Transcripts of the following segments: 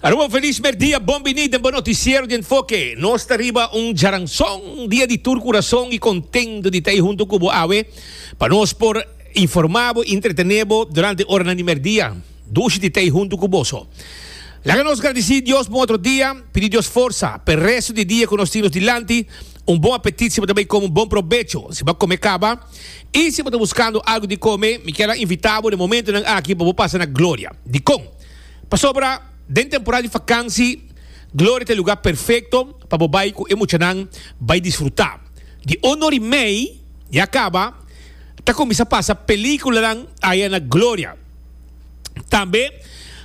Aruba feliz merdia, bon bini den bo noticiero di Enfoque. Nos ta riba un jaranson dia di tur curason y contento di ta ei hunto cu bo awe pa nos por informa bo y entretene bo durante oranan di merdia. Dushi di ta ei hunto cu boso. Laga nos gradici Dios bon otro dia, pidi Dios forsa p'e resto di dia cu nos tin nos dilanti. Un bon apetit siempre ta bay como un bon probecho si bo a come caba. Y si bo ta buscando algo di come, mi kier a invita bo den momentonan aki pa bo pasa na Gloria. Dicon? Pasobra den temporada di vakansi, Gloria ta e lugar perfecto pa bo bay cu e muchanan bay disfruta. Di un or y mey ya caba, ta cuminsa pasa peliculanan aya na Gloria. Tambe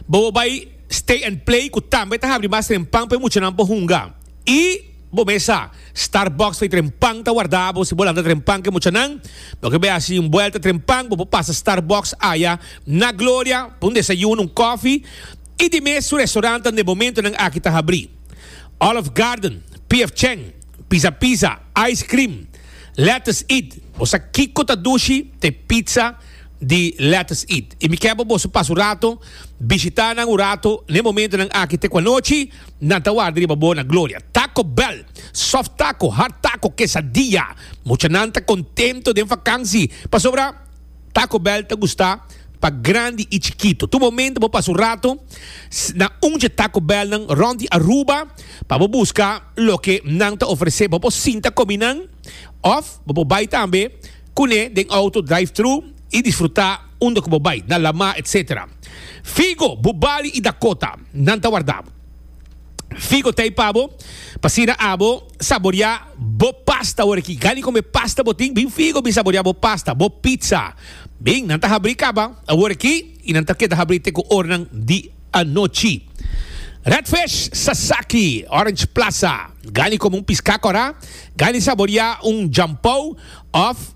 bobo bay Stay and Play cu tambe ta habri mas tempan pa e muchanan por hunga. Y. Bo mes sa, Starbucks fei tren pan ta warda bo si bo lanta tren pan ke muchanan. Bo ke bai hasi un buelta tren pan, bo por pasa Starbucks aya na Gloria pa un desayuno, un kofi i di mes su restaurantenan den momentonan aki ta habri, Olive Garden, PF Chang, Pizza Pizza, Ice Cream, Lettuce Eat. Bo sa kiko ta dushi? Ta e pizza di Lettuce Eat. I mi ke bo boso pasa un rato bishita nan un rato na e momentonan aki te ku anochi. nan ta warda riba bo na gloria. Taco Bell, soft taco, hard taco, quesadilla. Muchanan ta contento den vakansi, pasobra Taco Bell ta gusta pa grandi y chikito. Tur momento bo pasa un rato na un dje Taco Bellnan rond di Aruba pa bo busca loke nan ta ofrece. Bo por sinta comi nan of bo por bay tambe cune den auto, drive-thru, y disfruta. Unda ku bo bai, na Lamá, etc. Figo, bu bali i dakota, nan ta warda figo tei pa bo, pa asina abo saboriá bo pasta. Ora ki gani con e pasta bo tin, bin figo bin saboriá bo pasta, bo pizza. Bin, nan ta habri caba awor aki i nan ta keda habri te ku ornan di anochi. Redfish sasaki, orange plaza, gani como un piscá corá, gani saboriá un jampou of.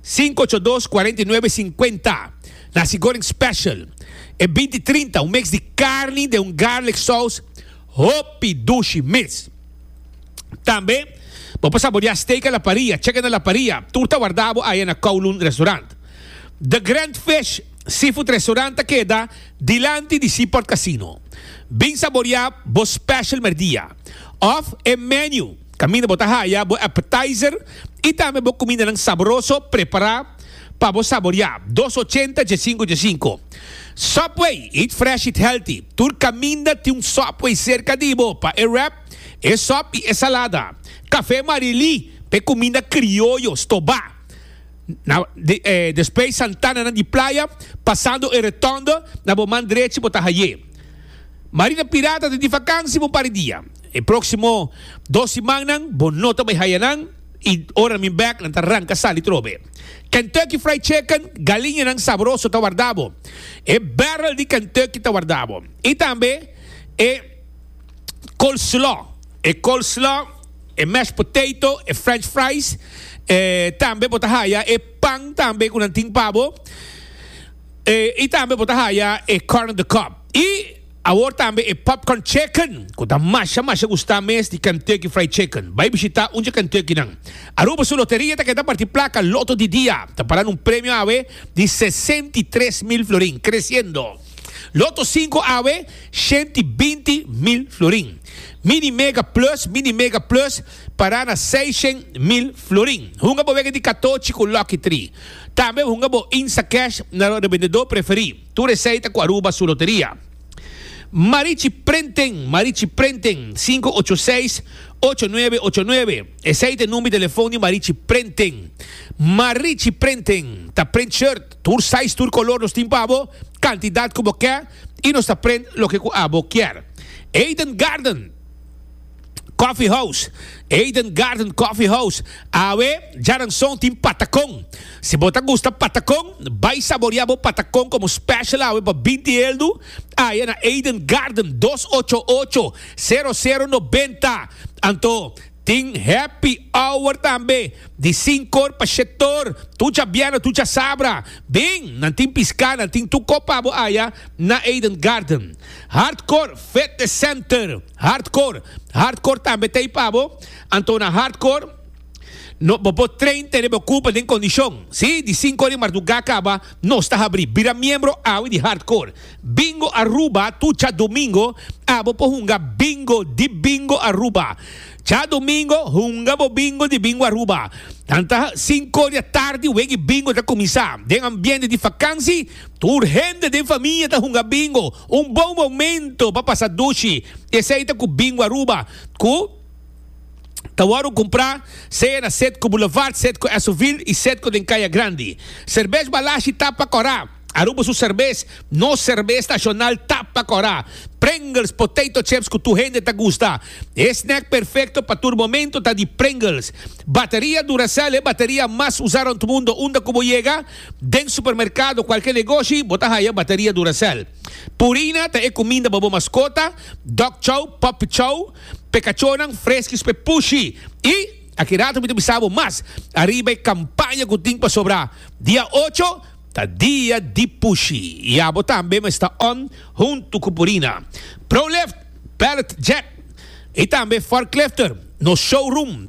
Sinku ocho dos, kuarenta i nuebe, sinkuenta. Nasi goreng special. E binti trinta, un mix di carni den un garlic sous hopi dushi mes. Tambe bo por saborea steak a la parrilla, chicken a la parrilla, tur ta warda bo aya na Kowloon Restaurant. The Grand Fish Seafood Restaurant ta keda dilanti di Seaport Casino. Bin saborea bo special merdia of e menu. Caminda bo ta haya bo appetizer y tambe bo cumindanan saboroso prepara pa bo saboria. Dos ochenta dje cinco dje cinco. Subway, eat fresh, eat healthy. Tur caminda tin un Subway cerca di bo pa e wrap, e sop y e salada. Cafe Marily pa e cuminda crioyo, stoba. Na Despues Santananan di Playa, pasando e Rotonde, na bo man drechi bo ta haye. Marina Pirata ta di vakantie pa un par di dia. E próksimo dos simannan bo no ta bai haya nan i ora mi bèk nan ta ranka sali trobe. Kentucky Fried Chicken, galiñanan sabroso ta warda bo. E bèrrel di Kentucky ta warda bo. I tambe e coleslaw, e coleslaw, e mashed potato, e french fries, e tambe bo ta haya e pan tambe ku nan tin pa bo. E i tambe bo ta haya e corn on the cob. I. Awor tambe e popcorn chicken cu ta masha masha gusta mes di Kentucky Fried Chicken. Bay bishita un dje Kentucky nan. Aruba su loteria ta keda parti placa Lotto di dia. Ta para na un premio awe di sesenta i tres mil florin, creciendo. Lotto cinco awe shent i binti mil florin. Mini Mega Plus, Mini Mega Plus, para na seishent mil florin. Hunga bo wega di catochi cu Lucky Three. Tambe hunga bo Instacash na lo rebendedor preferi. Tur esei ta ku Aruba su loteria. Marichi Prenten, Marichi Prenten, sinku ocho seis, ocho nuebe ocho nuebe, esei ta e number di telefon di Marichi Prenten. Marichi Prenten ta prent shirt, tur size, tur kolor nos tin pa abo, kantidat ku bo ke i nos ta prent loke ku abo kier. Eden Garden. Coffee House, Eden Garden Coffee House, awe djaranson tin patacon. Si bo ta gusta patacon, bay saboria bo patacon como special awe pa binti heldu, aya na Eden Garden dos ocho ocho, sero sero noventa. Anto tin happy hour tambe di sinkor pa shetor, tu dja biana tu dja sabra. Bin, nan tin pisca, nan tin tu copa bo aya na Eden Garden. Hardcore Fitness Center Hardcore Hardcore tambe ta ei pa bo, anto na Hardcore no bo por train tene bo kurpa den kondishon. Sí, di sinku ora di mardugá kaba nos ta habrí. Bira miembro awe di Hardcore Bingo Aruba tur djadumingo. Abo por hunga bingo di Bingo Aruba djadumingo. Hunga bo bingo di Bingo Aruba. Tanta sinku ora di atardi wegi bingo ta kuminsá den ambiente di vakansi. Tur hende den famia ta hunga bingo, un bon momento pa pasa dushi. Esei ta ku Bingo Aruba, ku ta wòrdu kumprá sea na Setco Boulevard, Setco Esovil i Setco den Kaya Grandi. Serbes Balashi ta pa kòrá. Aruba su serbes, nos serbes nashonal ta pa kòrá. Pringles potato chips ku tur hende ta gusta. E snack perfekto pa tur momento ta di Pringles. Bateria Duracell, e bateria mas usá rònt mundu, unda ku bo yega? Den supermerkado, kualke negoshi, bo ta haya bateria Duracell. Purina ta e kuminda pa bo maskota, dog chow, puppy chow, p'e kachónan, freskis p'e pushi. I, aki rato mi ta bisa bo mas, ariba e kampaña ku tin pa sobrá, dia ocho ta dia di pushi i abo tambe mester on huntu ku Purina. Prolift, Pallet Jack i tambe Forklifter nos showroom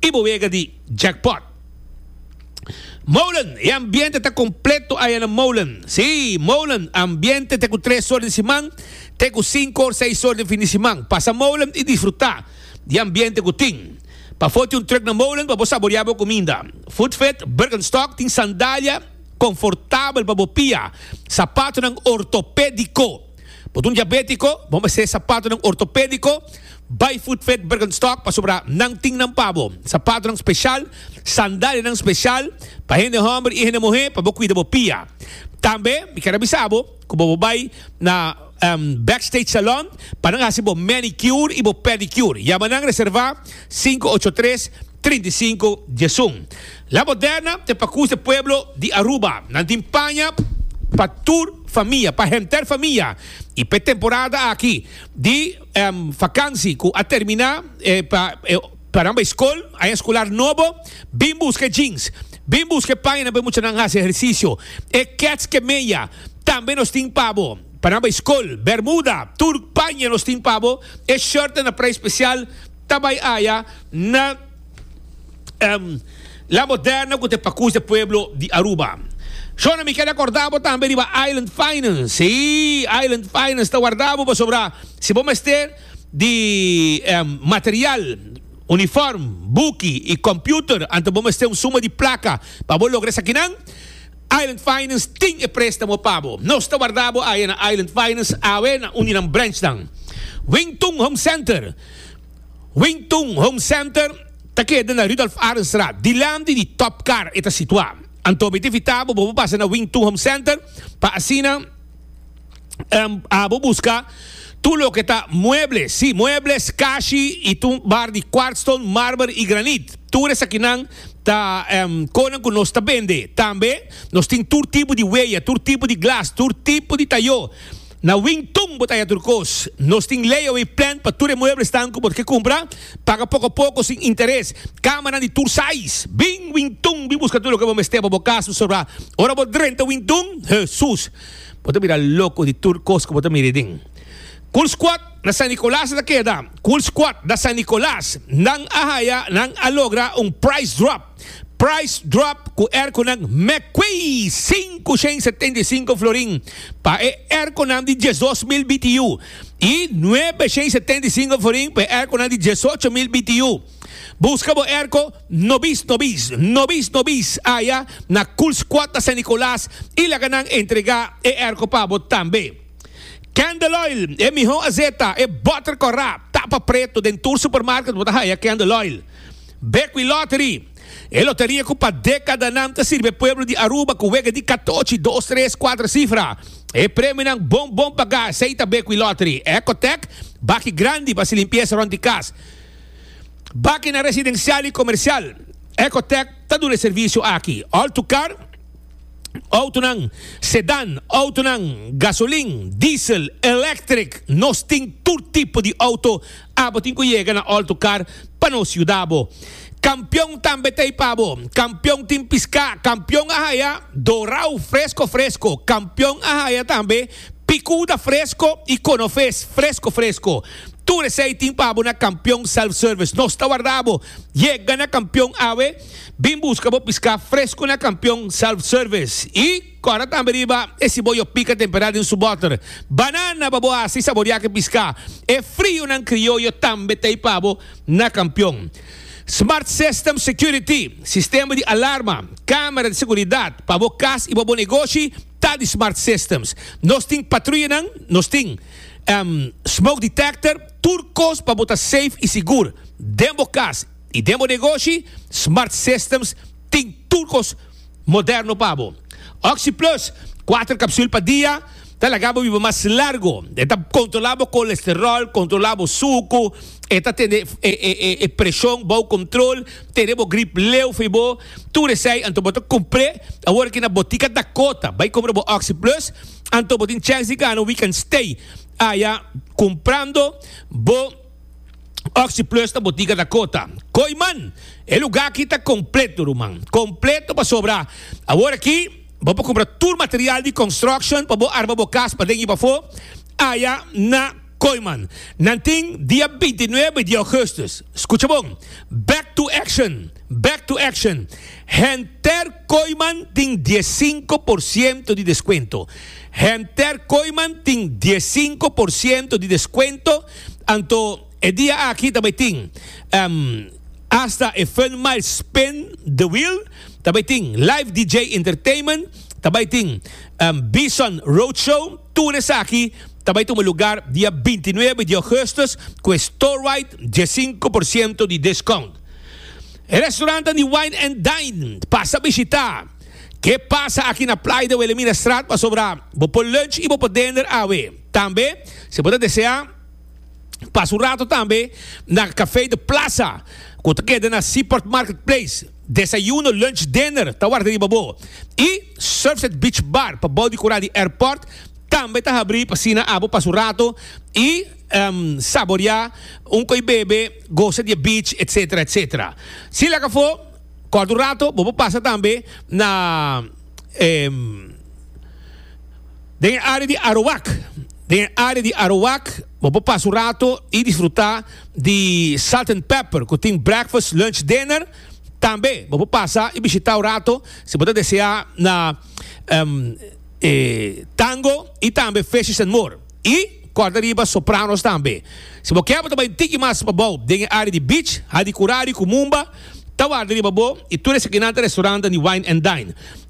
y bo wega di jackpot. Molen, e ambiente ta completo aya na Molen. Si, Molen, ambiente te cu tres or di siman te cu cinco or seis or di fin di siman. Pasa Molen y disfruta di ambiente cu tin. Pa foti un truck na Molen pa bo saborea bo cuminda. Foodfit Birkenstock tin sandalia confortabel pa bo pia, sapatonan ortopedico. Bo ta un diabetico? Bo mester sapatonan ortopedico. Bai Footfit Birkenstock pasobra nan tin nan pa bo, sapatonan speshal, sandalianan speshal pa hende hòmber i hende muhé pa bo kuida bo pia. Tambe mi ker a bisa bo ku bo por bai na Backstage Salon pa nan hasi bo manicure i bo pedicure. Yama nan reservá sinku ocho tres trinta i sinku diesun. La Moderna ta e Pakus de Pueblo di Aruba. Nan tin paña pa tur famia, pa henter famia i p'e temporada aki di. Vakansi ku a terminá pa pa nan bai skol, aña eskular nobo, bin buska e jeans, bin buska e pañanan pa e muchanan hasi ehersisio, e kèts ku e meya tambe nos tin pa bo, pa nan bai skol, bermuda, tur paña nos tin pa bo, e shòrtnan na preis spesial ta bai aña na. um, la moderna cu te pa cus e pueblo di Aruba. Shona, mi keda corda bo tambe riba Island Finance. Sí, Island Finance ta warda bo pasobra si bo mester di um, material, uniform, buki y computer, anto bo mester un suma di placa pa bo logra esakinan, Island Finance tin e prestamo pa bo. Nos ta warda bo aya na Island Finance awe na un di nan branchnan. Wington Home Center. Wing Tung Home Center ta keda na Rudolf Arendstraat, dilanti di Top Car e ta situá. Anto bo e ta invitá bo bo por pasa na Wing Tung Home Center pa asina bo buska tur loke ta mueble, sí, muebles, kashi i tur un bar di kwartstone, mármer i granit. Tur esakinan ta konan ku nos ta bende. Tambe nos tin tur tipo di weya, tur tipo di glas, tur tipo di tayó. Na Wing Tun bo ta haya tur cos. Nos tin layaway plan pa tur e mueblesnan cu bo ke cumpra. Paga poco a poco sin interes. Camanan di tur size. Bin Wing Tun bin busca tur loke bo mester pa bo cas su sobra. Ora bo drenta Wing Tun, Hesus! Bo ta bira loco di tur cos cu bo ta mira ey den. Cool Squad na San Nicolas a ta keda. Cool Squad da San Nicolas. Nan a haya, nan a logra un price drop. Price drop ku erkonan Mcquay sinku shen i setenta i sinku florin pa e erkonan di diesdos mil BTU i nuebe shen i setenta i sinku florin pa e erkonan di diesocho mil BTU. Buska bo erko nobis nobis, nobis nobis aya na Kulsquata San Nicolas i laga nan entregá e erko pa bo tambe. Candle Oil, e mihó azeta, e bòter kòrá, tapa pretu, den tur supermarket bo ta haya Candle Oil. Bekwin Lottery, e loteria ku pa dekadanan ta sirbi e pueblo di Aruba ku wega di katochi, dos, tres, kuater sifra. E premionan bon bon pagá, esei ta Bekwin Lottery, Ecotec, Baki Grandi pa hasi limpiesa rònt di kas, Baki na residensial i komersial. Ecotec ta duna e servisio aki, Altucar, outonan sedan, outonan gasolin, diesel, electric, nos tin tur tipo di outo. Abo tin cu yega na alto car pa nos yuda bo. Campeon tambe t'ey pa bo. Campeon tin pisca, campeon a haya dorao fresco fresco, campeon a haya tambe picuda fresco y conofes fresco fresco. Tur esey tin pa bo na Campeon Self Service. Nos ta warda bo. Yega na Campeon awe, bin busca bo pisca fresco na Campeon Self Service y. Kòrda tambe riba e siboyo pika temperá den su bòter. Banana pa bo hasi saboriá ku e piská. E frionan krioyo tambe ta ei pa bo na kampion. Smart System Security, sistema di alarma, kámera di seguridat, pa bo kas i pa bo negoshi ta di Smart Systems. Nos tin patruyanan, nos tin smoke detector, tur kos pa bo ta safe i sigur den bo kas i den bo negoshi. Smart Systems tin tur kos. moderno pa bo. Oxy Plus, kuater kapsul pa dia, ta laga bo biba mas largo. E ta kontrolá bo kolesteròl, kontrolá bo suku, e ta tene e preshon bou kontrol, tene bo grip leu for bo. Tur esei anto bo ta kumpr'é. Awor aki na Botica Dakota bai kumpra bo Oxy Plus, anto bo tin chèns di gana We Can Stay aya kumprando bo. Oxy Plus na botiga Dakota. Koi man, e lugá aki ta kompleto ruman. Kompleto pasobra awor aki bo por kumpra tur material di construction pa bo arma bo kas paden i pafó aya na Koi man. Nan tin dia binti nuebe di Augustus. Skucha bon, Back to action! Back to action! Henter Koi man tin dies sinku por siento di deskuento. Henter Koi man tin dies sinku por siento di deskuento. Anto e dia aki ta bay tin hasta e fun mile spin the wheel, ta bay tin live DJ entertainment, ta bay tin Bison road show, tur esaki ta bay tuma lugar dia binti nuebe di Augustus cu e store wide diesinco por ciento di discount. E restaurantan di Wine and Dine pasa bishita. Ke pasa aki na Playa de Wilhelminastraat pasobra bo por lunch y bo por dender awe. Tambe si bo ta desea pasa un rato tambe na Café de Plaza cu ta keda na Seaport Market Place, desayuno, lunch, dinner ta warda riba bo. Y Surfside Beach Bar pabao di cura di airport tambe ta habri pa asina abo pasa un rato y saborea un coi bebe, goza di e beach etc. Etc. Si laga afo corta un rato bo por pasa tambe na. Den e área di Arawak, Den e área di Arawak bo por pasa un rato i disfrutá di Salt and Pepper ku tin breakfast, lunch, dinner. Tambe bo por pasa i bishitá un rato si bo ta deseá na e Tango i tambe Fishes and More i kòrda riba Sopranos tambe. Si bo kè bo ta bai un tiki mas pa bou den e área di Beach, Hadi Kurari ku Mumba ta warda riba bo i tur esakinan ta restaurannan di Wine and Dine.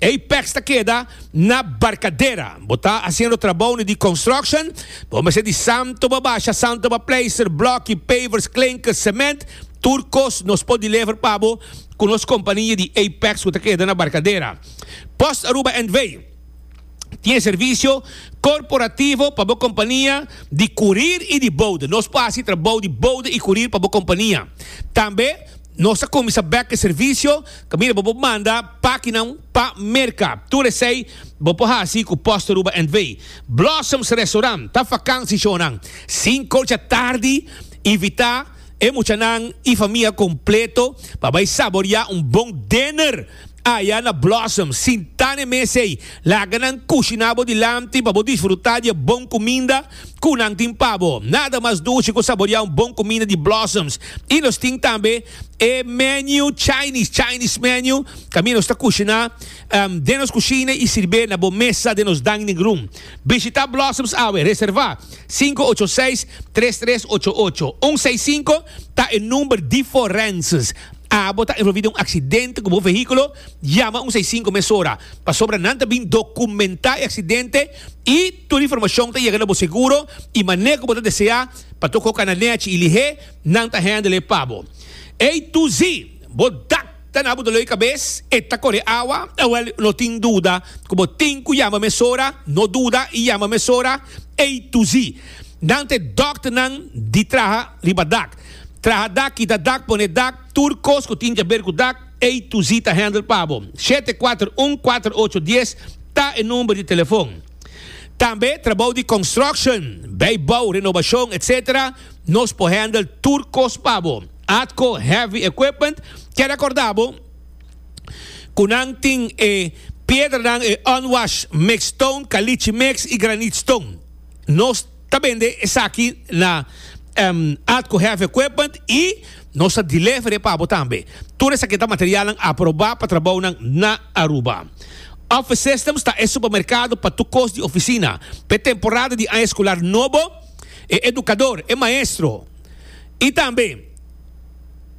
Apex ta keda na Barcadera. Bo ta haciendo trabounan di construction? Bo mester di Santo pa basha, Santo pa pleister, blokkie, pavers, klinkers, cement, tur cos nos por deliver pa bo cu nos compania di Apex cu ta keda na Barcadera. Post Aruba NV. Tin e servicio corporativo pa bo compania di curir y di bouda. Nos por haci trabou di bouda y curir pa bo compania. Tambe. Nos a cuminsa bek e servicio caminda bo por manda pakinan pa merca. Tur esey bo por haci cu post Aruba NV. Blossoms Restaurant ta vakansi shonan. Sinku dja tardi invita e muchanan y famia completo pa bay saboria un bon dinner. Aya na Blossom, sintá n'e mes ei, laga nan kushiná bo dilanti pa bo disfrutá di e bon kuminda ku nan tin pa bo. Nada mas dushi ku saboriá un bon kuminda di Blossoms. I nos tin tambe e menu Chinese, Chinese menu, kaminda nos ta kushiná den nos kushina i sirb'é na bo mesa den nos dining room. Bishitá Blossoms awe, reservá, sinku ocho seis, tres tres ocho ocho. Un seis sinku ta e number di forenses. A bo ta envolvi den un aksidente ku bo vehíkulo? Yama un seisinku mesora, pasobra nan ta bin dokumentá e aksidente i tur informashon ta yega na bo seguro i manera ku bo ta deseá pa toko kana nèchi i lihé, nan ta hèndel e pa bo. Ey tu si bo dak ta na bo doló i kabes, e ta kore awa, awèl no tin duda ku bo tin ku yama mesora, no duda i yama mesora. Ey tu si nan ta e dòkternan di traha riba dak. Traha dak, kita dak, pone dak, tur kos ku tin kaber ku dak, ei tu zi ta hèndel pa bo. Shete kuater un kuater ocho dies ta e number di telefon. Tambe trabou di construction, bei bou, renobashon, etc. Nos por hèndel tur kos pa bo. Atco Heavy Equipment kier a korda bo ku nan tin e piedranan, e unwashed mixed stone, caliche mix i granite stone. Nos ta bende esaki na Atco Heavy Equipment y nos ta deliver e pa bo tambe. Tur esaki ta materialnan aproba pa trabounan na Aruba. Office Systems ta e supermercado pa tur cos di oficina. Pa e temporada di aña escolar nobo, e educador, e maestro y tambe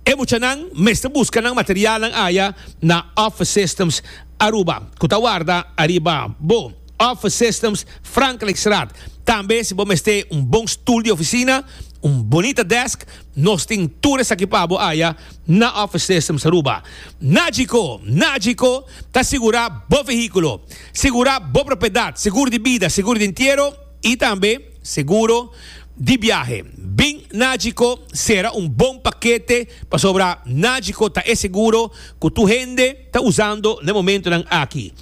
e muchanan mester busca nan materialnan aya na Office Systems Aruba cu ta warda ariba bo. Office Systems, Frankrijkstraat. Tambe si bo mester un bon stoel di oficina, un bonita desk, nos tin tur esaki pa bo aya na Office Systems Aruba. Nagico, Nagico ta sigura bo vehiculo, sigura bo propiedad, seguro di bida, seguro di entiero y tambe seguro di biahe. Bin Nagico sera un bon pakete pasobra Nagico ta e seguro cu tur hende ta usando na e momentonan aki.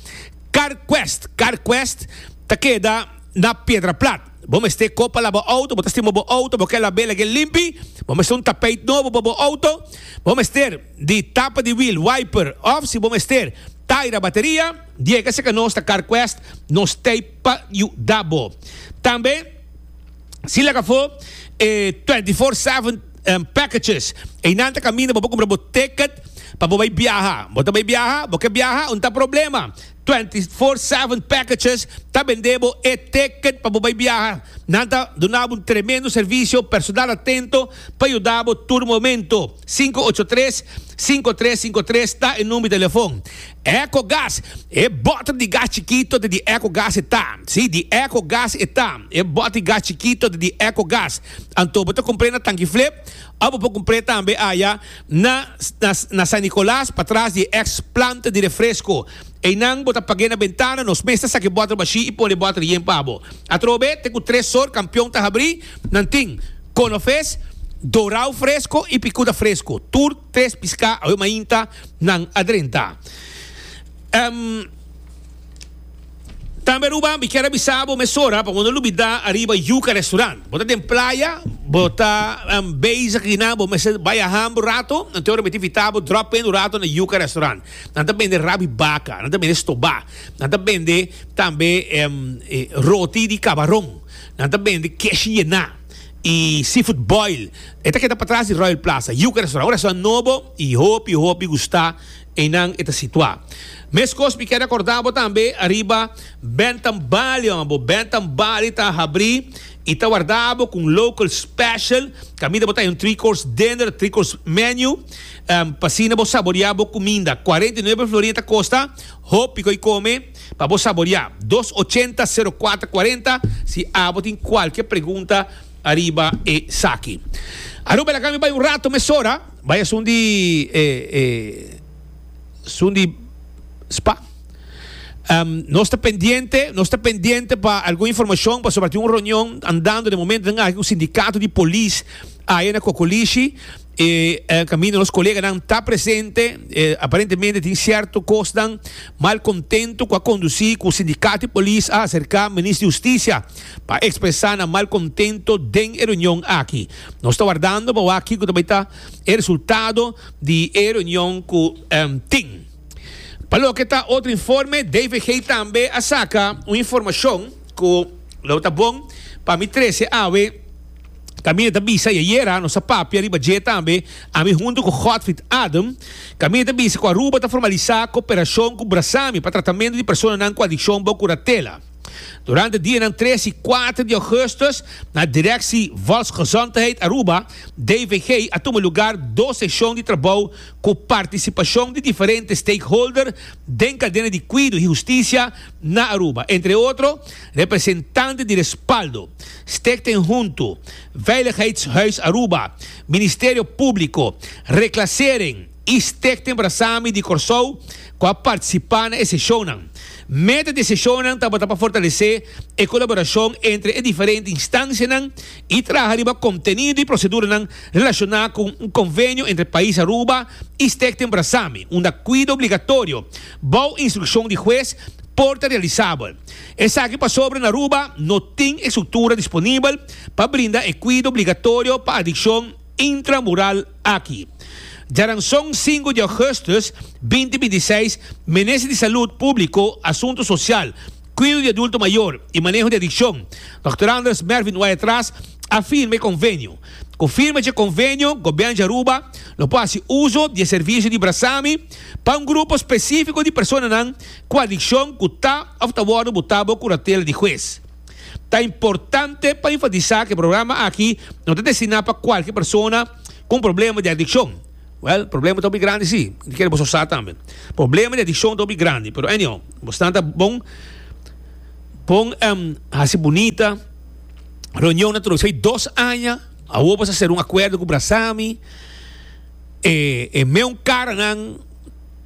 Carquest, Carquest ta keda na Piedra Plat. Bo mester ko pa laba auto, bo ta stima bo auto, bo ke labe lagu'e limpi, bo mester un tapeit nobo pa bo auto, bo mester di tapa di wiel, wiper, of si bo mester taira bateria, diega si ka nos ta Carquest nos tei pa yuda bo. Tambe si laga fo e 24 seven packages. Einan ta caminda bo por cumpra bo ticket pa bo bay biaha. Bo ta bay biaha, bo ke biaha un ta problema. 24/7 packages ta bende bo e ticket pa bo bay biaha. Nan ta duna bo un tremendo servicio, personal atento pa yuda bo tur momento. Sinku ocho tres, sinku tres sinku tres ta e number di telefon. Eco Gas, e boter di gas chikito ta di Eco Gas e ta. Si, di Eco Gas e ta. E boter di gas chikito ta di Eco Gas. Anto bo ta cumpré na Tangieflip of bo por cumpré tambe aya na na San Nicolas patras di e ex planta di refresco. Eynan bo ta pag'é na bentana nos mes ta sak'é bòter bashí y pone e bòter yen pa bo. Atrobe te cu tres sort campeon ta habrí, nan tin, Cono Fes, Dorao Fresco y Picuda Fresco. Tur tres piscá awe mainta nan a drenta. Ehm. Tambe Ruba mi kier a bisa bo mesora pa bo no lubida ariba Yuca Restaurant. Bo ta den playa, bo ta um, bezig hierna, bo mester bay a ham bo rato, nan te ora miti fita bo drop in un rato na Yuca Restaurant. Nan ta bende rabi baca, nan ta bende stoba, nan ta bende tambe um, e roti di cabaron, nan ta bende kesh hierna y seafood boil. E ta keda patras di Royal Plaza, Yuca Restaurant. Un restaurant nobo y hopi, hopi gusta. Einan e ta situá. Meskos mi keda kordá bo tambe ariba Bentham Bali hombre. Bentham Bali ta habrí i ta wardá bo ku un local special. Kaminda bo ta haña un three course dinner, three course menu, pa asina bo saboreá bo kuminda. Cuarenta y nueve florin ta kosta, hopi ko'i kome pa bo saboreá. Dos ochenta sero kuater kuarenta si abo tin kualke pregunta ariba esaki. Aruba, laga mi bai un rato mesora. Bai esun di e e sun di spa. Um, nos ta pendiente, nos ta pendiente pa algun informacion pasobra tin un reunion andando den momento den aki cu sindicato di polis aye na Cocolishi e eh, caminda nos coleganan ta presente e aparentemente tin cierto cosnan mal contento cu a conduci cu sindicato di polis a acerca Minister di Husticia pa expresa nan mal contento den e reunion aki. Nos ta wardando pa wak kico ta bay ta e resultado di e reunion cu tin. Pa loke ta otro informe, DVG tambe a saca un informacion cu lo ta bon pa mi trece awe. Camine ta bisa y ayera nos a papia riba dje tambe, ami hunto cu Godfried Adem. Camine ta bisa cu Aruba ta formaliza cooperacion cu Brasami pa tratamento di personanan cu adiccion bo curatela. Durante dianan tres i kuater di ougustus na Direksi Volksgezondheid Aruba, DVG, a tuma lugar dos seshon di trabou ku partisipashon di diferente stakeholder den kadena di kuido i hustisia na Aruba, entre otro representante di Respaldo, Stichting Huntu, Veiligheidshuis Aruba, Ministerio Públiko, Reklasering, I Stichting Abrasami di Kòrsou ku a partisipá na e seshonnan. Meta di e seshonnan tabata pa fortalesé e kolaborashon entre e diferente instansianan i traha riba kontenido i proseduranan relashoná ku un konvenio entre Pais Aruba i Stichting Abrasami unda kuida obligatorio, bou instrukshon di hues, por ta realisabel. Esaki pasobra na Aruba no tin e struktura disponibel pa brinda e kuida obligatorio pa adikshon. intramural aki. Djaranson sinku di Augustus binti binti i seis, Minister di Salud Públiko, Asuntu Sosial, Kuido di Adulto Mayor i Maneho di Adikshon, Dòkter Anders Mervin Wayatraas, a firma e konvenio. Ku firma dje konvenio, Gobièrnu di Aruba lo por hasi uso di e servisio di Brasami pa un grupo spesífiko di personanan ku adikshon ku ta òf ta wòrdu botá bo kuratela di hues. Ta importante pa enfatisa cu e programa aki no ta destina pa cualkier persona cu un problema di adiccion. Well, problema ta hopi grandi si, di kere bo so sa tambe. Problema di adiccion ta hopi grandi, pero anyhow, bo snan ta bon, bon em, haci bunita, reunion na troisa di dos aña, awor bo sa ser un acuerdo cu Brasami, e, e meun caranan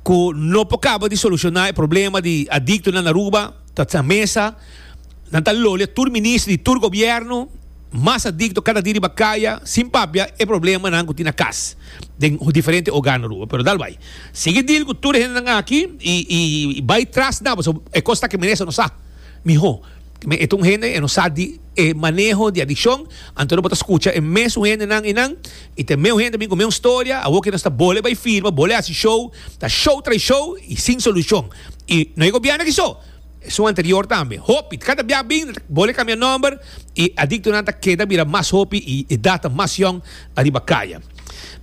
cu no por caba di soluciona e problema di adictonan na Aruba, Ta sa mesa, nan ta lolia tur minister di tur gobierno, mas adicto cada dia riba caya, sin papia e problemanan cu tin na cas, den diferente hogar na Aruba. Pero dal bay. Sigui deal cu tur e hendenan aki y, y, y bay tras nan, pasobra e cos taki men esnan no sa miho. Esaki e ta un hende e no sa di e maneho di adiccion, anto bo ta scucha e mesun hendenan y nan, y ta e meun hende bin cu meun storia, awo cu nos ta bole bay firma, bole haci show, ta show tras show y sin solucion. Y no e gobierno aki so, esun anterior tambe. Hopi, cada bia bin bole cambia nomber y adictonan ta keda bira mas hopi y edad ta mas yong ariba caya.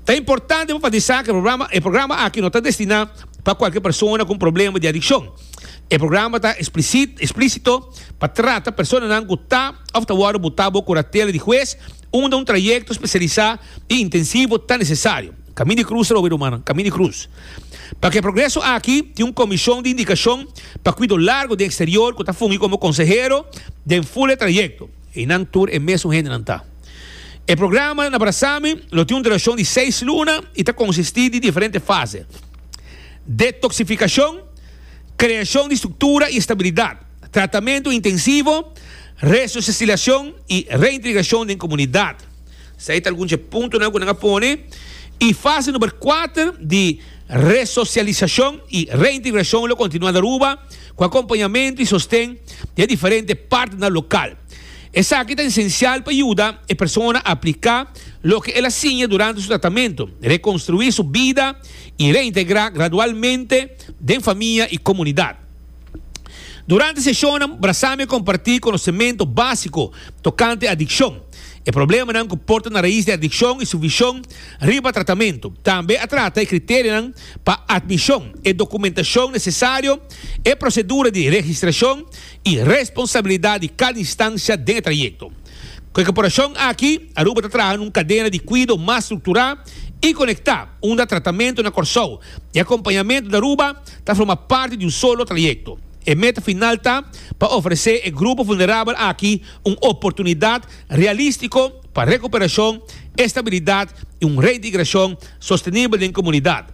Ta importante pa enfatisa cu e programa, e programa aki no ta destina pa cualkier persona cu un problema di adiccion. E programa ta explicit, explicito, pa trata personanan cu ta of ta wordo buta bo curatela di huez unda un trayecto specialisa y intensivo ta necesario. Camin di Cruz ta lo obi rumannan, Camin di Cruz. Pa ku e progreso aki tin un komishon di indikashon pa kuido largu den eksterior ku ta fungi komo konsehero den ful e trayekto. I nan tur e mesun hendenan ta. E programa na Brasami lo tin un durashon di seis luna i ta konsistí di diferente fase, detoksifikashon, kreashon di struktura i estabilidat, tratamentu intensivo, resosisilashon i reintegrashon den komunidat. Esei ta algun dje puntonan ku nan a pone i fase number kuater di resosialisashon i reintegrashon lo kontinuá ta Aruba ku akompañamentu i sosten di e diferente partner lokal. Esaki ta esensial pa yuda e persona a apliká loke el a siña durante su tratamentu, rekonstruí su bida i reintegrá gradualmente den famia i komunidat. Durante seshonnan, Brazami a kompartí konosementu básiko tokante adikshon, e problemanan ku por ta na rais di adikshon i su vishon riba tratamentu. Tambe a trata e kriterionan pa admishon, e dokumentashon nesesario, e prosedura di registrashon i responsabilidat di kada instansha den e trayekto. Ku e korporashon aki, Aruba ta traha na un kadena di kuido mas strukturá i konektá, unda tratamentu na Kòrsou i akompañamentu na Aruba, ta forma parti di un solo trayecto. E meta final ta pa ofrece e grupo vulnerabel aki un oportunidad realistico pa recuperacion, estabilidad y un reintegracion sostenibel den comunidad.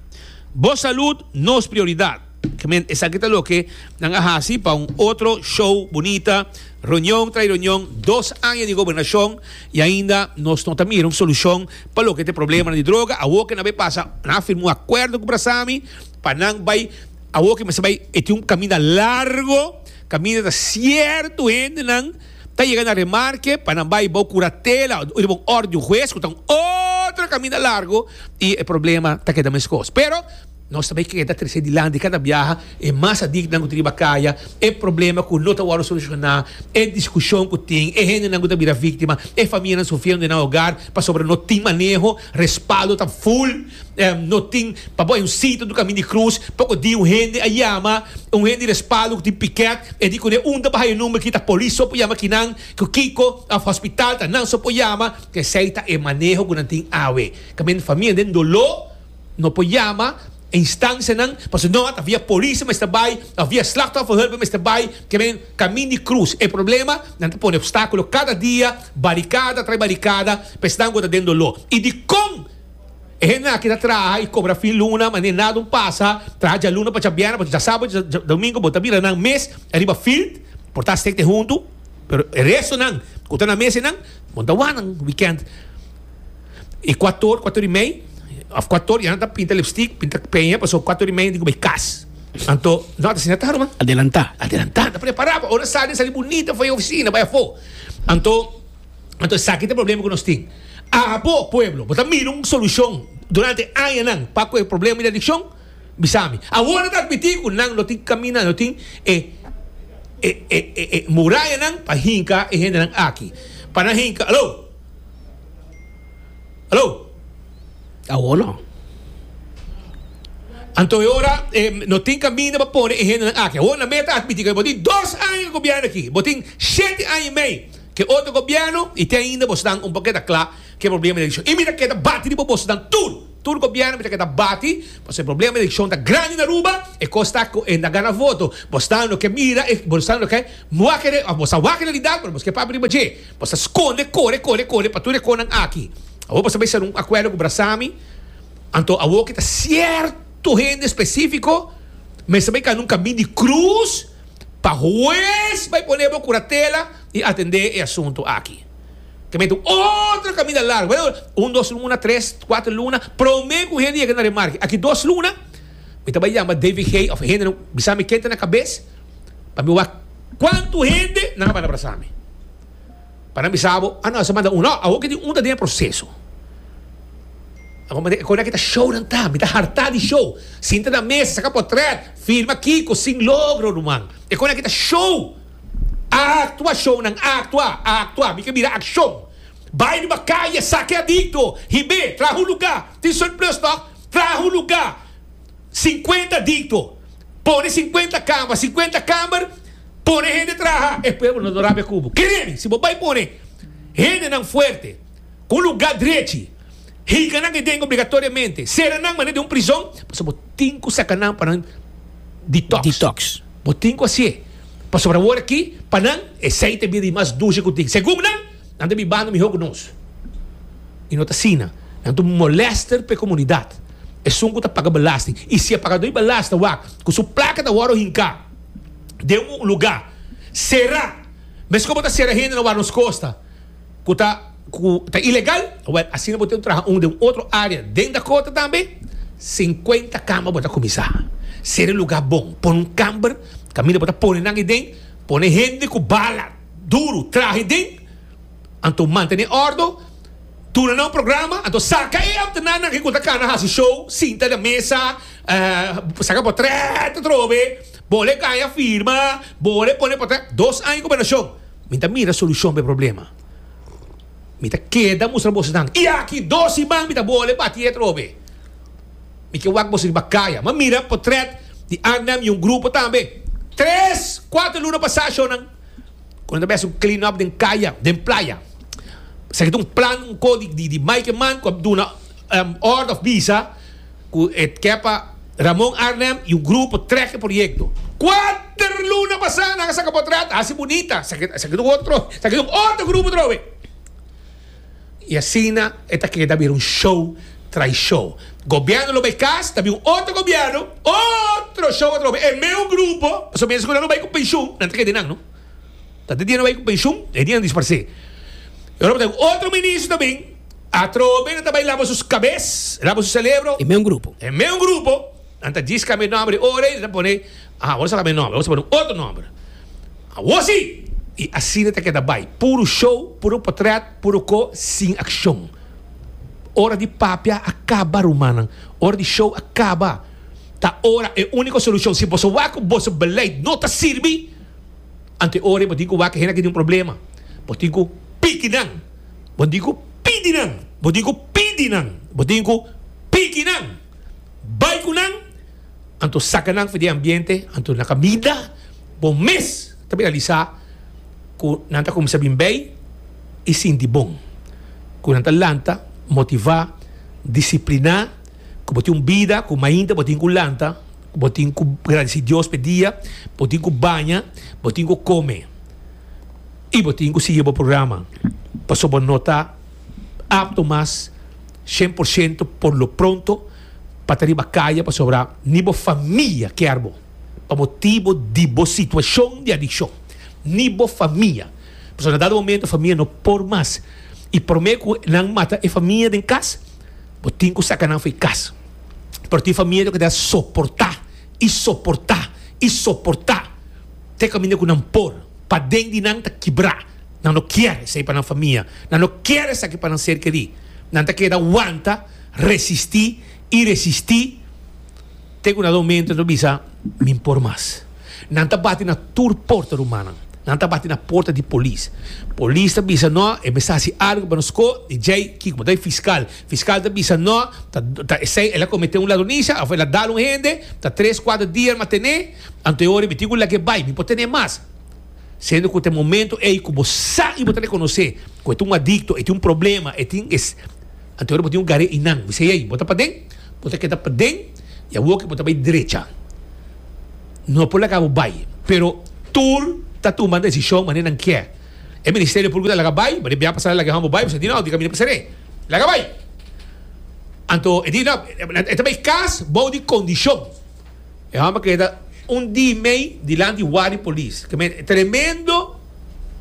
Bo salud nos prioridad. Gemen, esaki ta loke nan a haci pa un otro show bunita, reunion tras reunion, dos aña di gobernacion y ainda nos no ta mira un solucion pa loke ta e problemanan di droga. Awo ke nan bay pasa, nan a firma un acuerdo cu Brasami. Pa nan bay awor ke mester bay e tin un caminda largo caminda ta cierto hendenan ta yega na remarke pa nan bay bao curatela o riba un orde di un huez cu ta un otro caminda largo y e problema ta keda mescos pero nos ta bay keda trece dilanti cada biaha y mas adicnan cu ta riba caya e problema cu no ta wordo soluciona e discusion cu tin e hendenan cu ta bira victima e famianan sufriendo nan hogar pasobra no tin maneho respaldo ta full. No tin, pa bo hay un sitio do camin di cruz, poco di un hende a yama, un hende di respaldo cu tin piquet, e di cune un ta baha e number aki ta polis so por yama kinan, cu kico, of hospital ta nan so por yama, esey ta e maneho cu nan tin awe, caminda e famia den dolo, no por yama e instancianan, pasobra no ata via polis a mester bay, of via slachtofferhulp a mester bay, kiaben camin di cruz, e problema, nan ta pone obstaculo cada dia, baricada tras baricada, pa esnan cu ta den dolo, y dicon. E hende aki ta traha i kobra fin luna, ma ne nada un pasa, traha djaluna pa djabièrnè, pa djasabado, pa djadomingo, bo ta bira nan mes ariba fild, por ta stekde huntu, pero e restonan ku ta na mesenan bon ta wànan wikènt. E kuator, kuator i mei, òf kuator ya nan ta pinta lipstik, pinta peña, pasobra kuator i mei nan tin ku bai kas. Anto no at asina tarba. Adelantá. Adelantá, ta prepará pa ora sali, sali bunita for e ofisina, bai afó. Anto. Anto esaki ta e problema ku nos tin. Abo, pueblo, bo ta mira un solushon durante añanan pa ku e problema di adikshon? Bisa mi. Awor nan ta admití ku nan no tin kaminda, no tin e e murayanan pa hinka e hendenan aki. Pa nan hinka, Aló! Aló! Awor no. Anto e ora e no tin kaminda pa pone e hendenan aki. Awor nan mester admití ku bo tin dos aña di gobièrnu aki, bo tin shete aña i mei. ke otro gobièrnu i te ainda bosnan un poket a kla ku e problema di elekshon. I mi ta keda bati riba bosnan tur, tur gobièrnu mi ta keda bati pasobra e problema di elekshon ta grandi na Aruba, e kos ta ku e na gana voto. Bosnan lo ke mira e, bosnan lo ke wakere òf bos ta wak realidat pero bos ke papia riba dje. Bos ta skonde, kore, kore, kore pa tur e kosnan aki. Awor bos ta bai sera un akuerdo ku Brasami, anto awor ke ta sierto hende espesífiko mester bai kana un kaminda di krus, pa hues bay pone bo curatela y atende e asunto aki. Ta mete un otro caminda largo, bay ora un dos luna, tres, cuatro luna, prome cu hende yega na remarki, aki dos luna, mi ta bay yama David Gay of hende nan bisami ken ta na cabes, pa mi wak cuanto hende nan a banda brasami. pa nan bisa bo, ah no, esa man ta un. No, awor ke di un ta den e proseso. Awor mira e kos aki ta shownan ta, mi ta hartá di show. Sinta na mesa, saka potrèt, firma Kiko sin logro, ruman. E kos aki ta show. A aktua shownan, a aktua, a aktua. Mi ke mira akshon. Bai riba kaye, sake adikto, hib'é, traha un lugá, tin surplus tòg, traha un lugá. Sinkuenta dikto, pone sinkuenta kama, sinkuenta kamer, pone hende traha, e pueblo no lo rabia ku bo. Keremi, si bo bai pone hendenan fuerte, ku un lugá drechi, hika nan den ei obligatoriamente, sera nan manera di un prizon, pasobra bo tin ku saka nan pa nan detox. Bo tin ku hasié, pasobra awor aki pa nan e seite bida di mas dushi ku tin, segun nan. Nan ta bibando mihó ku nos i no ta asina. Nan ta un molèster pa e komunidat. Esun ku ta paga balastin i si e pagadó di balas ta wak ku su plaka ta wòrdu hinká den un lugá será, meskos bo ta sera hende na wòrdu nos kosta ku ta ku ta ilegal, wèl asina bo ten ku traha un den un otro área den Dakota tambe. Sinkuenta kamba bo ta kuminsá sera e lugá bon. Pon un kamber kaminda bo ta pone nan ei den, pone hende ku bala. duru trahe den, anto mantene ordo, duna nan un programa, anto saka e ambtenar nan ke ku ta kana hasi show, sinta den mesa, saka por trèt atrobe, bole e kaña firma, bole e pone por trèt, dos aña gobernashon, mi ta mira solushon pa e problema, mi ta keda mustra boso nan i aki dos siman mi ta bole bati atrobe. Mi ke wak boso riba kaya. M'a mira potrèt di Arnhem i un grupo tambe. Tres, kuater luna pasá ashonan, ku nan ta bes un clean up den kaya, den playa, sa ke ta un plan un ko di di Maike Mann ku a duna òrdu òf bisa ku e ke pa Ramon Arnhem i un grupo trèk e proyekto. Kuater luna pasá nan a saka potrèt, a hasi bunita, sa ke sa ke ta un otro, sa ke ta un otro grupo trowe. Y asina e ta keda bira un show tras show. Gobierno lo bay cas, ta bin un otro gobierno, otro show atrobe. E meun grupo, pasobra mester cu nan lo bay cu pensioen, nan ta keda nan no. Ta tin dia nan bay cu pensioen, e dia nan disparse. Y ora bo ta bin otro ministro ta bin, atrobe nan ta bay laba su cabes, laba su celebro. E meun grupo. E meun grupo, nan ta djis cambia e nombre ora y nan ta pone. Aha, bo no sa ta bay nomber, bo ta pone un otro nomber. Awor si! Y asina ta keda bay, puro show, puro potret, puro co, sin accion. Ora di papia a caba, rumannan. Ora di show a caba. Ta ora e unico solucion. Si boso wak cu boso beleid no ta sirbi, anto e ora bo tin cu wak cu hende aki tin un problema. Bo tin cu piki nan. Bo tin cu pidi nan. Bo tin cu pidi nan. Bo tin cu piki nan. Bay cu nan. Anto saca nan for di e ambiente, anto na caminda bo mes ta bira lisa cu nan ta cuminsa bin bay y sinti bon, cu nan ta lanta, motiva, disciplina, cu bo tin un bida cu mainta bo tin cu lanta, cu bo tin cu gradici Dios pa e dia, bo tin cu baña, bo tin cu come y bo tin cu sigui bo programa pasobra bo no ta apto mas Shen por shento por lo pronto pa ta riba kaya pasobra ni bo famia kier bo pa motibo di bo situashon di adikshon, ni bo famia. Pasobra na dado momento famia no por mas i prome ku nan mata e famia den kas bo tin ku saka nan fo'i kas. Pero tin famia lo ke ta soporta i soporta i soporta te kaminda ku nan por paden di nan ta kibra. Nan no kier esei pa nan famia. Nan no kier esaki pa nan ser kerí. Nan ta keda wanta, resistí i resistí te ku na don Mento ta bisa, Mi N por mas. Nan ta bati na tur porta rumannan. Nan ta bati na porta di polis. Polis ta bisa, No, e mester hasi algu pa nos. Ko? I djei kiko? Bo ta e fiskal. Fiskal ta bisa, No, ta, ta esei. El a kometé un ladronisa òf el a dal un hende. Ta tres, kuater dia el maten'é. Anto e ora i mi tin ku lag'é bai. Mi por ten'é mas. Siendo cu ta e momento ey cu bo sa y bo ta reconoce cu e ta un adicto, e tin un problema, e tin es, anto ora bo tin un garé y nan, mi siey ey, bo ta paden, bo ta keda paden y awo ki bo ta bay drecha, no por laga bo bay, pero tur ta tuma decision manera nan kier. E Ministerio Publico ta laga bay, manera bia pasada laga e hom bo bay, boso a di no, di camina pa seré, laga bay. Anto e di no, e ta bay cas bou di condicion. E homber keda un di mei dilanti wari polis. Tremendo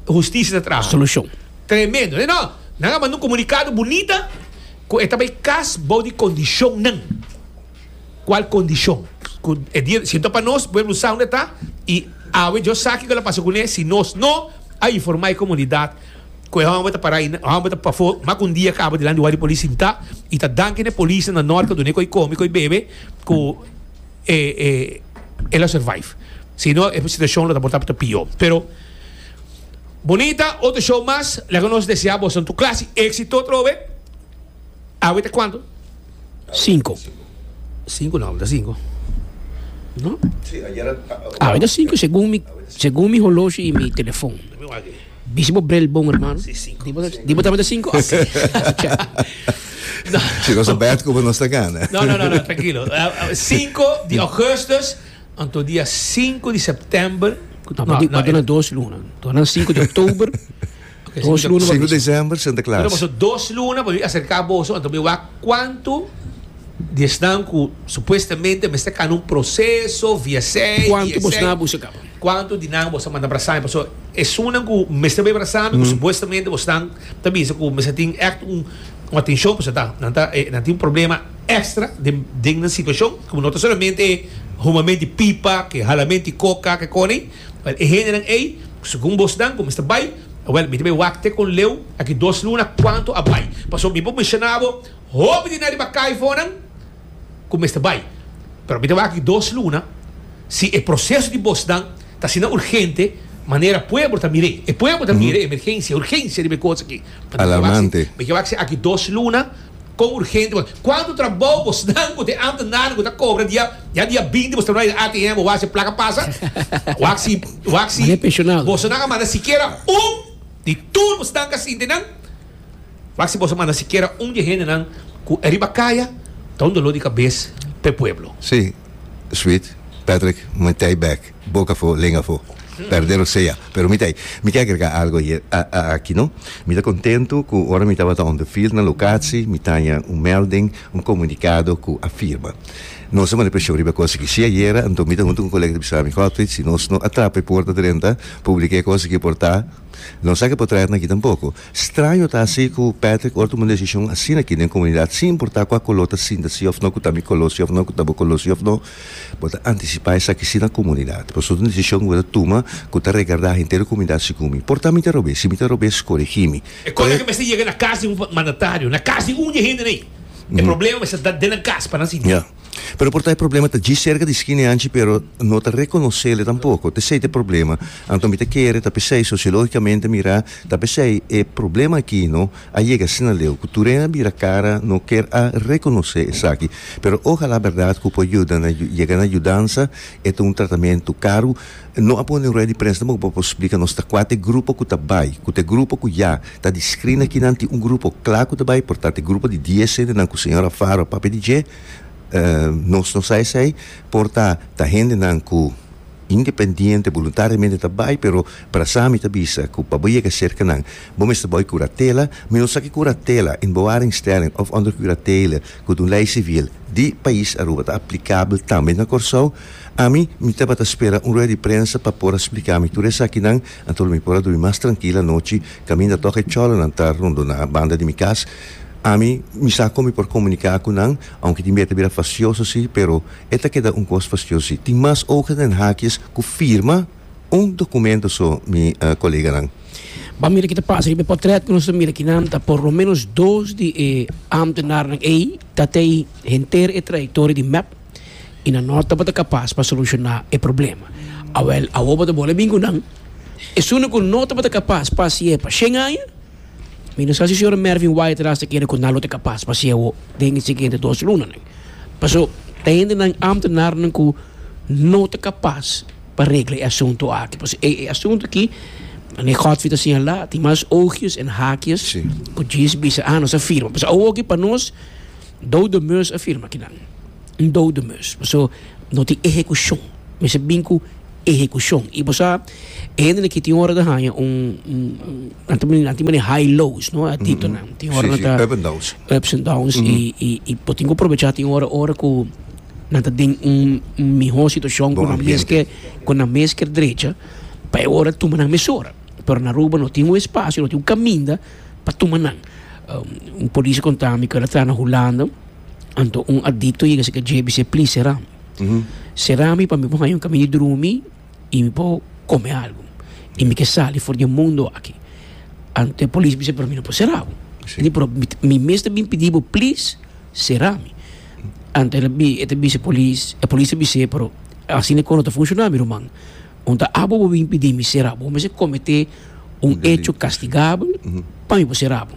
husticia ta traha. Solucion. Tremendo. Nan a manda un comunicado bunita cu e ta bay cas bao di condicionnan. Cual condicion? Cu e dia sinto pa nos pueblo sa unda e ta y awe djo sa kico lo pasa cu ne si nos no a informa e comunidad cu e homber ta para ayina. E homber ta pafo mas cu un dia caba dilanti wari polis sinta y ta danki na e polisnan na norte dune cu a come, cu a bebe. cu e e el a survive. Si no e situacion lo ta por ta ta pio. Pero Bonita otro show mas laga nos desea boso tu clase exito otro vez awe ta cuanto? Cinco. Cinco no, awe ta cinco. No? Awe ta cinco segun mi segun mi holoshi y mi telefon. Bishi bo brel bon hermano. Si, cinco. Di bo, di bo tambe cinco? Ah, sí. Si nos bed como nos gana. No, no, no, no, tranquilo. Uh, uh, 5 di augustus, anto dia 5 di september. No, no, no, no, dos luna. Dona 5 di oktober. Okay, dos luna. 5 december, Santa Claus. Pero dos luna, para acercar vos, anto mi wa quanto di esnan ku supuestamente me está cano un proceso via sei. Quanto vos na busca? Cuanto di nan bo sa manda brasami pasobra esunnan cu mester bay brasami cu supuestamente bosnan ta bisa cu mester tin echt un atencion pasobra ta nan ta e nan tin un problema extra den den nan situacion cu no ta solamente e humamen di pipa ke halamen di coca ke konen wel e hendenan ey segun bosnan cu mester bay wel mi ta bay wak te con leu aki dos luna cuanto a bay pasobra mi por mencionabo hopi di nan riba caifonan. cu mester bay. Pero mi ta wak aki dos luna, si e proceso di bosnan ta asina urgente manera pueblo ta mir'e. E pueblo ta mir'e emergencia, urgencia riba e cos aki. Alarmante. Mi ta wak si aki dos luna con urgente bo. Cuantu trabou bosnan cu te ambtenaren cu ta cobra dia, ya dia binti bos ta bay na ATM bo wak si e placa pasa. Wak si, wak si bosonan a manda sikiera un di tur bosnan casintenan. Mas si boso manda sikiera un di e hendenan ku e riba kaya, ta un doló di kabes pa e pueblo. Sí, Sweet, Patrick, mi ta ei bèk, bok afó, lenga afó, pèrdé lo sea, pero mi ta ei. Mi ke agregá algu ayer, aki no. Mi ta kontentu ku ora mi tabata on the field na lokatsi, mi taña un melding, un komunikado ku a firma. Nos a manda preshon riba e kos aki. Sí ayera, anto mi ta huntu ku un kolega ta bisa mi, Godfrey, si nos no a trapa e porta drenta, publiká e kos aki por ta, nos a ke por traha nan aki tampoko. Straño ta hasi ku Patrick or tuma un desishon asina aki den komunidat sin importá kua koló ta sinta si òf no, ku ta mi koló si òf no, ku ta bo koló si òf no. Bo ta antisipá esaki si na komunidat. Pasobra un desishon ku bo ta tuma ku ta regardá henter komunidat segun mi. Por ta mi ta rob'é. Si mi ta rob'é, skorigí mi. E kos aki mester yega na kas di un mandatario, na kas di un di e hendenan ei. E problema mester ta den nan kas pa nan sinti. Pero por ta e problema ta dji serka di skina e anchi pero no ta rekonosele tampoko. T'esei t'e problema. Anto mi ta kere ta p'esei sosiologikamente mirá ta p'esei e problema aki no a yega asina leu ku tur'en a bira kara no ker a rekonosé esaki. Pero ojalá berdad ku por yuda na yega na yudansa e ta un tratamentu karu. No a pone un rueda di prensa tampoko pa por splika nos ta kuater grupo ku ta bai, ku t'e grupo ku ya. Ta di screener ki nan tin un grupo cla cu ta bay, por ta ta e grupo di dies hendenan cu señor Alfaro a papia di dje. Nos no sa esey, por ta ta hendenan cu independiente, boluntariamente ta bay, pero brasa mi ta bisa cu pa bo yega cerca nan bo mester bay curatela. Mi no sa ki curatela, een bewaringstelling of onder curatele cu ta un ley civil di pais Aruba ta aplicabel tambe na Corsou. Ami mi tabata spera un rueda di prensa pa por a splica mi tur esakinan. Anto mi por a dumi mas trankil anochi, kaminda tok e cholonan ta rondoná banda di mi kas. Ami, mi sa kon mi por komuniká ku nan, ounke tin bia ta bira fasioso sí, pero e ta keda un kos fasioso sí. Tin mas ogen den hakies ku firma un dokumento so, mi koleganan. Ban mira ke ta pasa riba e potrèt ku nos ta mira kinan ta por lo menos dos di e ámtenarnan ei ta tei henter e trayektoria di mep. i nan no tabata kapas pa solushoná e problema. Awel, awor bo ta bole bin ku nan. Esunde ku no tabata kapas pa hasié pa shen aña, mi no sa si señora Mervin Wyatt ras ta kere ku nan lo ta kapas pa hasié awor den e siguiente dos lunanan. Paso, ta hendenan, ámtenarnan ku no ta kapas pa regla e asuntu aki. Paso, e asuntu aki, Ane Godfrey ta señalá, tin mas oogjes en haakjes ku djis bisa, ah, nos a firma. Paso, awor aki pa nos. Dode Meus a firma kinan. Dode Meus. Paso no tin ehekushon. Mester bin ku ehekushon. I bo sa, e hende aki tin ora ta haña un, nan ta nan ta mane high lows, no, e atitonan. Tin ora nan ta. Si, si. Up and downs. Ups and downs. I, i, i bo tin ku probechá tin ora, ora ku nan ta den un, un mihó situashon ku nan mes ke, ku nan mes ker drecha, pa e ora tuma nan mesora. Pero na Aruba no tin un espasio, no tin un kaminda pa tuma nan. Un polis a konta mi ku el a traha na Hulanda, anto un adikto a yega si ka dje bis'é, Plis, sera mi. Sera mi pa mi por haña un kamiña di drumi i mi por kome algu. I mi ke sali for di e mundu aki. Anto e polis a bisa pa mi, No por sera bo. Mi por mi mes ta bin pidi bo, Plis, sera mi. Anto e polis a bis'é, Pero asina e kos no ta funshoná, mi ruman. Unda abo bo bin pidi mi sera bo mester komete un echo kastigabel pa mi por sera bo?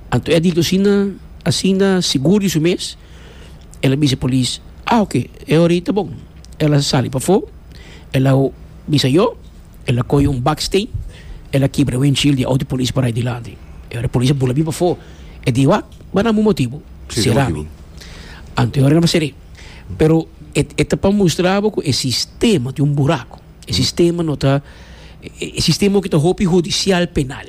Anto e a dikto asina, asina sigur di su mes, el a bisa e polis, Ah, oke, e ora ei ta bon. El a sali pafó, el a bisa yo, el a kohe un baksteen, el a kibra e wenshield di e outo polis parai dilanti. E ora e polis a bula mi pafó, e di, Wak, bai na bo motibu, sera mi. Anto e ora el a ser'é. Pero e e ta pa mustra bo ku e sistema tin un buraku. E sistema no ta e e sistema hopi ta hopi hudisial penal.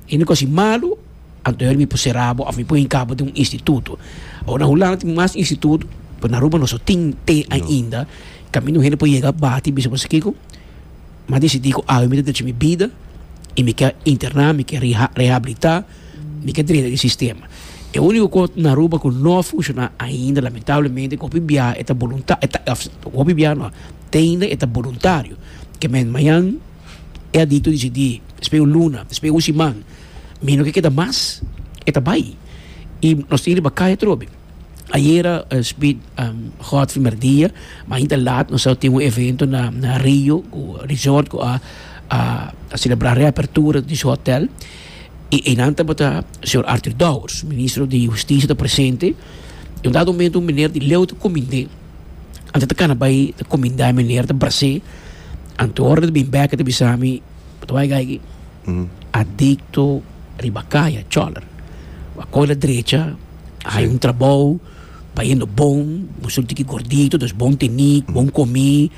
E uni kos i malu anto heri mi por sera bo òf mi por hinka bo den un instituto. Ora Hulanda tin mas instituto, pero na Aruba no so tin te ainda kaminda un hende por yega bati bisa bo sa kiko. Mi a decidí ku awe mi ta derecha mi bida i mi ke interná, mi ke rehabilitá, mi ke drenta di sistema. E úniko kos na Aruba ku no a funshoná ainda, lamentablemente, ku hopi biaha e ta bolunta-, e ta, hopi biaha no, teinda e ta boluntario. Ke mènt mañan e adikto decidí, dispoi un luna, dispoi un siman, mi no ke keda mas, e ta bai. I nos tin riba kai atrobe. Ayera Smith a hot primer dia, ma ainda laat nos a tin un evento na na Rio ku resort ku a a a selebrá reapertura di su hotel. I einan tabata señor Arthur Dowers, Ministro di Hustisia ta presente. I undado momento un meneer di Leu ta kumind'é. Anto ta kana bai ta kuminda e meneer ta bras'é. Anto ora ta bin bèk e ta bisa mi, Bo ta bai kai aki? Adikto riba kaya, chòler. Bo a kohe la drecha. hay un trabao pa yendo bon bo solo tin ki gordito dos bon teni bon komi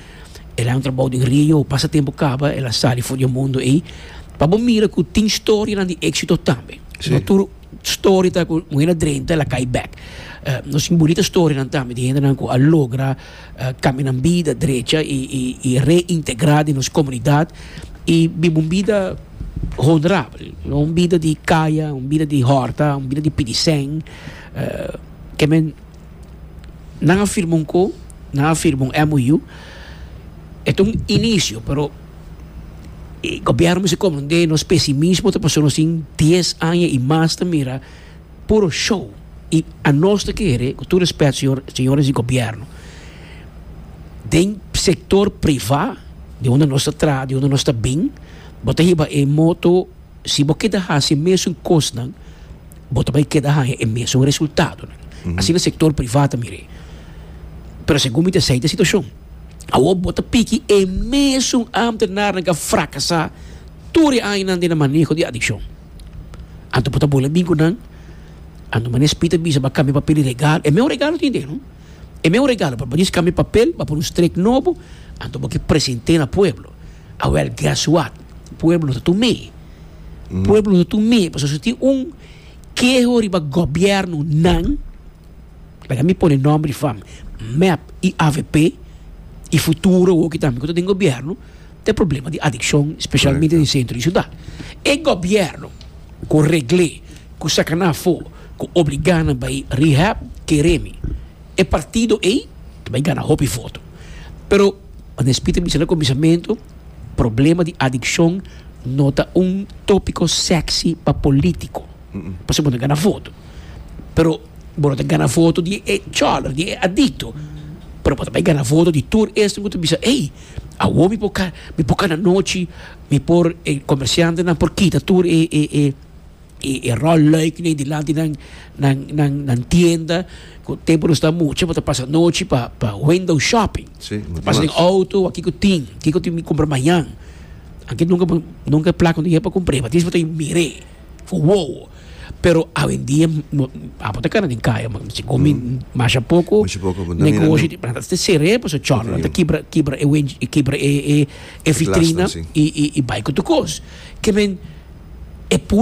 el hay un trabao den rio pasa tempo kaba el a sali for di e mundo ey pa bo mira ku tin storianan di éksito tambe si no tur story ta ku un hende a drenta el a kai bèk nos tin bunita storianan tambe di hendenan ku a logra. Kambia nan bida drecha i reintegrá den nos komunidat i biba un bida honorabel, un bida di kaya, un bida di hòrta, un bida di pidi sèn. Ke men, nan a firma un ko, nan a firma un MOU, e ta un inisio, pero e gobièrnu mester komprendé nos pesimismo ta pasó nos tin dies aña i mas ta mira. Puro show y anos ta kere cu tur respet señores di gobierno den sector priva di unda nos ta traha di unda nos ta bin bo ta hiba e moto si bo keda haci e mesun cosnan bo ta bay keda haya e mesun resultadonan asina sector priva ta mire pero segun mi ta esey ta e situacion awor bo ta piki e mesun ambtenarenan cu a fracasa tur e añanan den maneho di adiccion. Anto bo ta bula bin ku nan, anto mane spri ta bisa ba kambia papel di regalo, e meu regalo tin den, e meu regalo pa banis kambia papel, ba pone un strek nobo, anto bo ke presente na pueblo. A wel guess what, pueblo ta tur mee, pueblo ta tur mee, pasobra si tin un keho riba gobièrnu nan, laga mi pone nòmber di fam, mep i avp i futuro hopi tambe ku ta den gobièrnu. ta e problema di adikshon, speshalmente den sentro di siudat. E gobièrnu ku regl'é, ku saka nan afó, ku obligá nan bai rehab, ker'é mi, e partido ei ta bai gana hopi voto. Pero, ora e spikèr bisa na kuminsamentu, problema di adikshon no ta un tópiko sèksi pa polítiko, pasobra no gana voto. Pero. Bo no ta gana voto di e chòler, di e adikto, pero bo ta bay gana voto di tur esnan ku ta bisa, ey, awor mi por ka, mi por kanda anochi, mi por, e komersiantenan por kita tur e, e, e, e ròl lùik den dilanti nan, nan, nan, nan tienda, ku tempu nos ta mucha bo ta pasa anochi pa, pa window shopping, Sí, mucho pasa den mas. outo, wak kiko tin, kiko tin mi kumpra mañan, anke nunka bo, nunka e plaka bo ta yega pa kumpr'é, ma tienes ku bo ta mira e. Wow! Pero awendia no, apo ta kara den kaya, man, si komi masha poko, Masha poko, bo ta mira negoshi nan. ta ta ser'é paso chòr, nan ta Definitivo. kibra kibra e wen e kibra e e e vitrina Glasnan, si. i i i bai ku tur kos. Ke men e